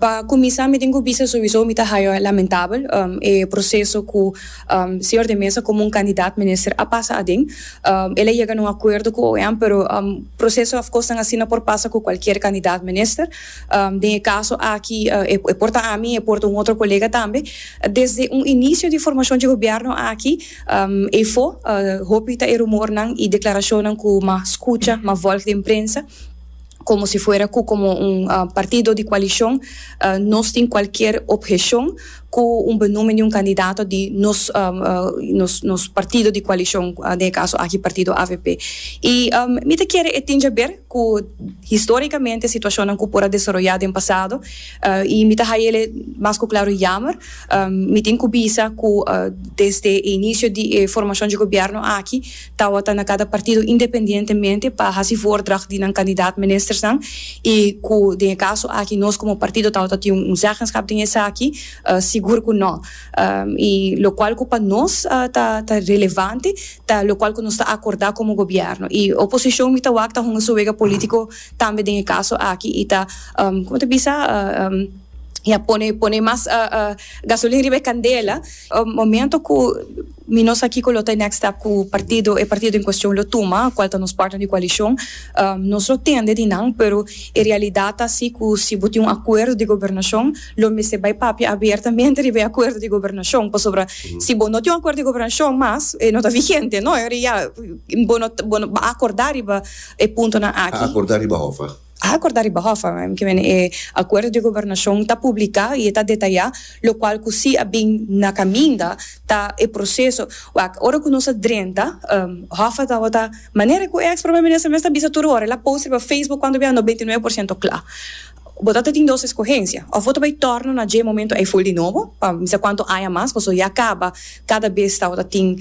Pa kuminsá mi tin ku bisa souiso mi ta haya lamentabel e proseso ku Señor de Mesa komo un kandidat minister a pasa aden. El a yega na un akuerdo ku OEM pero proseso òf kosnan asina por pasa ku kualkier kandidat minister. Den e kaso aki e por ta ami e por ta un otro kolega tambe. Desde un inisio di formashon dje gobièrnu aki efo hopi ta e rumornan i deklarashonnan ku mas skucha, mas vòlg den prensa. komo si fuera ku komo un partido di koalishon nos tin kualkier opgeshon ku un benúmen di un kandidato di nos nos partido di koalishon, den e kaso aki partido avp. I mi ta kere e tin dje ber ku historikamente situashonnan ku por a desaroyá den pasado i mi ta haya el e mas ku klaru yammer, mi tin ku bisa ku desde e inisio di e formashon dje gobièrnu aki, Tawata na kada partido independientemente pa hasi voordracht di nan kandidaat ministersnan i ku den e kaso aki nos komo partido tawata tin un zeggenschap den esaki? Sigur ku no. I lokual ku pa nos ta ta relevante ta lokual ku nos ta akordá komo gobièrnu i oposishon mi ta wak ta hunga su wega polítiko tambe den e kaso aki i ta kiko mi ta bisa ya pone pone mas gasolin riba e kandela momento ku. Mi no sa kiko lo ta e next step ku partido, e partido en kuestion lo tuma, kual ta nos partner di koalishon. Nos lo tende di nan, pero e realidat ta si ku si bo tin un akuerdo di gobernashon, lo mester bai papia abertamente riba e akuerdo di gobernashon, pasobra si bo no tin un akuerdo di gobernashon mas, e no ta vigente, no? Bo no, bo no, bo no a akordá riba e puntonan aki. A akordá riba hof a? A acorda riba hofa kimen e acuerdo di gobernacion ta publica y e ta detaya locual cu si a bin na caminda ta e proceso wak ora cu nos a drenta hofa ta wota manera cu e ex Prome Minister mes ta bisa tur ora el a post riba Facebook cuando bia no beinti nuebe por ciento cla bo ta ta tin dos escogencia of bo ta bay torna na dje momento ay full di nobo pa mi sa cuanto aña mas pasobra ya caba cada bes ta wota tin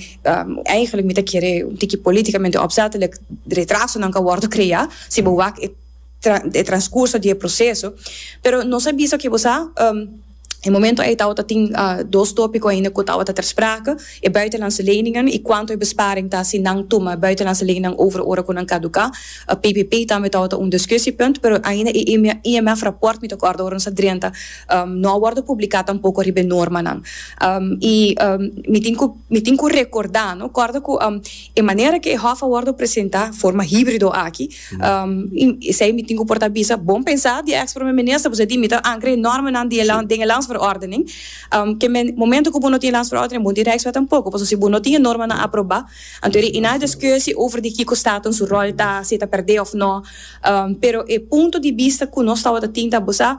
eigenlijk mi ta kere un tiki politicamente opzettelijk retrasonan ta wordo crea. Si bo wak e e transcurso di e proceso, pero nos a bisa cu bo sa e momento ei tabata tin dos topico ainda cu tabata ter sprake, e buitenlandse leningen y cuanto e besparing ta si nan tuma e buitenlandse leningen over ora cu nan caduca, PPP tambe tabata un discussiepunt, pero ainda e IMF rapport mi ta acorda ora nos a drenta no a wordo publica tampoco riba e normanan y mi tin cu mi tin cu recorda no corda cu. E manera ke e hòf a wòrdu presentá, forma híbrido aki, esei mi tin ku por ta bisa bon pensá di e eks Prome Minister, pasobra di mi ta ankra e nòrmenan di e land den e Landsverordening, ke men momento ku bo no tin e Landsverordening bo no tin Rijkswet tampoko, pasobra si bo no tin e normanan aprobá, anto e na e diskushi over di kiko Staten su ròl ta, si e ta pèrdè òf nò, pero e punto di bista ku nos tabata tin ta bosá.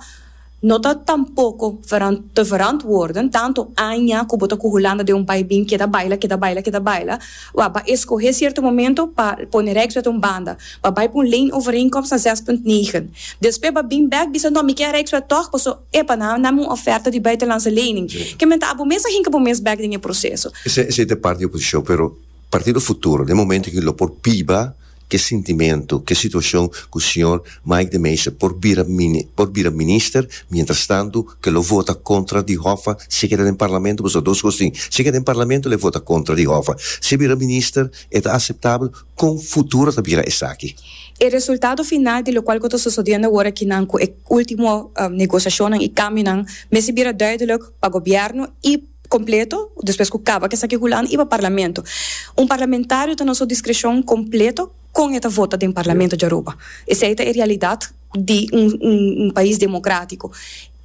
No ta tampoko verant te verantwoorden tanto aña ku bo ta ku Hulanda den un bai bin keda baila, keda baila, keda baila, wak pa eskohé sierto momento pa pone Rijkswet un banda, pa bai pa un leenovereenkomst na zes punt negen. Despues pa bin bèk bisa no mi ke Rijkswet tòg paso epa nan a nam un oferta di buitenlandse lening. Ke men ta abo mes a hinka bo mes bèk den e proseso. Esei ta e parti di oposishon pero Partido Futuro den momento aki lo por biba. ke sintimentu, ke situashon ku señor Mike de Meyster por bira por bira minister, mientrastantu ke lo vota kontra di Hoffa si keda den parlamento, pasobra dos kos tin, si keda den parlamento lo vota kontra di Hoffa, si e bira minister e ta aseptabel, kon futuro ta bira esaki? E resultado final di lokual ku ta sosodiendo awor aki nan ku e ultimo negosiashonnan i kambionan mester bira duideluk pa gobièrnu i. completo despues cu caba cu esaki hulan y pa parlamento un parlamentario ta na su discrecion completo con e ta vota den parlamento dja Aruba esey ta e realidad di un pais democratico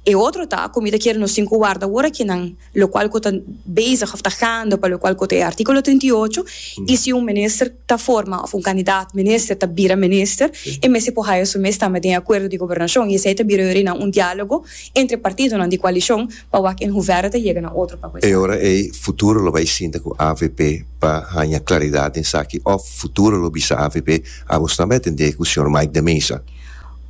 e otro ta cu mi ta kere nos tin cu warda awor aki nan lo cual cu ta bezig of ta gando pa lo cual cu ta e articulo trinta y ocho y si un minister ta forma of un candidato minister ta bira minister e mester por haya su mes tambe den e acuerdo di gobernacion y esey ta bira yorinan un dialogo entre partidonan di coalicion Pa wak en huvera ta yega na otro papel. E ora ei futuro lo bai sinta ku avp pa haña klaridat den esaki òf futuro lo bisa avp amos tambe a tende ku señor Mike de Meza.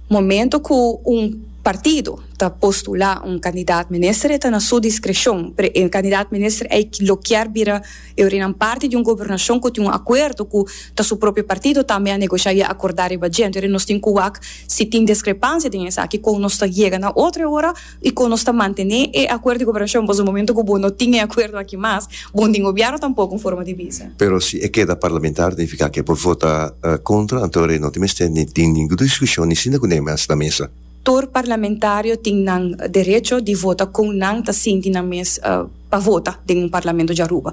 Momento ku un partido ta postulá un kandidat minister e ta na su diskreshon, pero e kandidat minister ei lo kier bira e orinan parti di un gobernashon ku tin un akuerdo ku ta su propio partido tambe a negosha i a akordá riba djento. Ora nos tin ku wak si tin deskrepansia den esaki kon nos ta yega na otro e ora. y con nos ta mantene e acuerdo di cooperacion, pasobra momento cu bo no tin e acuerdo aki mas, bo no tin gobierno tampoco en forma di bisa. Pero si e keda parlamentario nifica ke por vota contra, anto e no tin mester ni tin ningun discusion ni sinda cu ney mas na mesa. Tur parlamentario tin nan derecho di vota con nan ta sinti nan mes pa vota den un parlamento di Aruba.